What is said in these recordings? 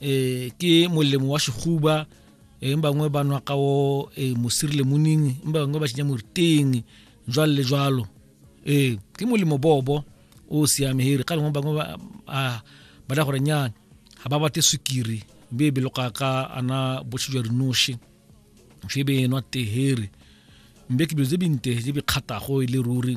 eh ke molemo wa sehuba eh bangwe ba nwa ka o eh mosiri le moning ba bangwe ba tsenya morteng jwalo le jwalo eh ke molemo bobo o siame here ka lengwe bangwe ba a ba da gore nyana ga ba bate sukiri be be loka ka ana botshi jwa rinoshi fe be nwa tehere mbe ke bjo tse binte je bi kgatago e le ruri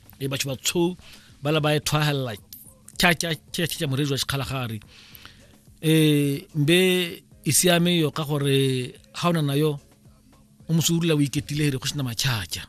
e batho ba tsho ba la ba e thwahella cha cha cha cha morejwa sekgalagare e mbe e siame yo ka gore ha ona nayo o mosurula o iketile re go sena machacha